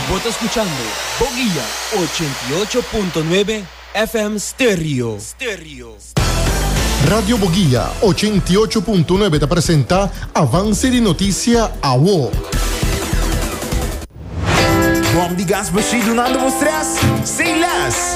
Bo ta skuchando Boguia ochenta i ocho punto nuebe FM Stereo. Radio Boguia ochenta i ocho punto nuebe ta presenta Avance di Noticia Awo. Bom di gas bashí dunando bo stress sin lès.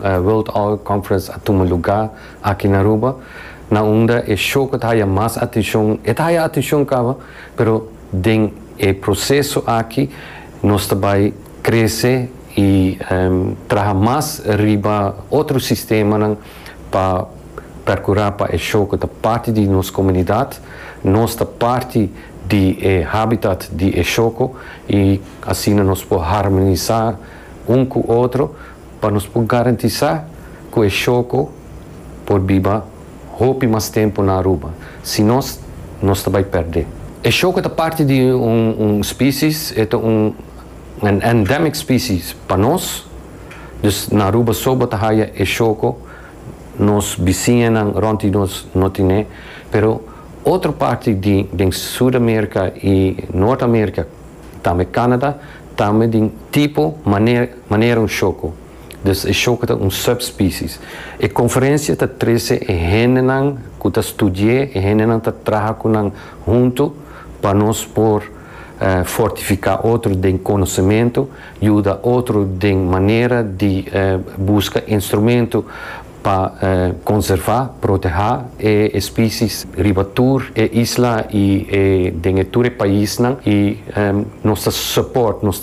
World Oil Conference a tuma lugá aki na Aruba, na unda e show ku ta haya mas atenshon, e ta haya atenshon kaba, pero den e proseso aki nos ta bai krese i traha mas riba otro sistemanan pa perkurá pa e show ku ta parti di nos komunidat, nos ta parti di e habitat di e shoko i asina nos por harmonisá un ku otro. Pa nos por garantisá ku e shoko por biba hopi mas tempu na Aruba, si nos, nos ta bai pèrdé. E shoko ta parti di un spesies, e ta un endemic species pa nos, dus na Aruba so bo ta haya e shoko, nos bisiñanan rònt di nos no tin'é, pero otro parti di den Sudamerika i Noordamerika, Tambe Canada, tambe di un tipo manera un shoko. Dus e shoko ta un subspecies. E conferencia ta trece e hendenan cu ta studié, e hendenan ta traha cu nan hunto pa nos por fortifica otro den conocemento, yuda otro den manera di busca instrumento. pa konservá, protehá e espisie's riba tur e isla i den e tur e paisnan i nos ta support, nos ta.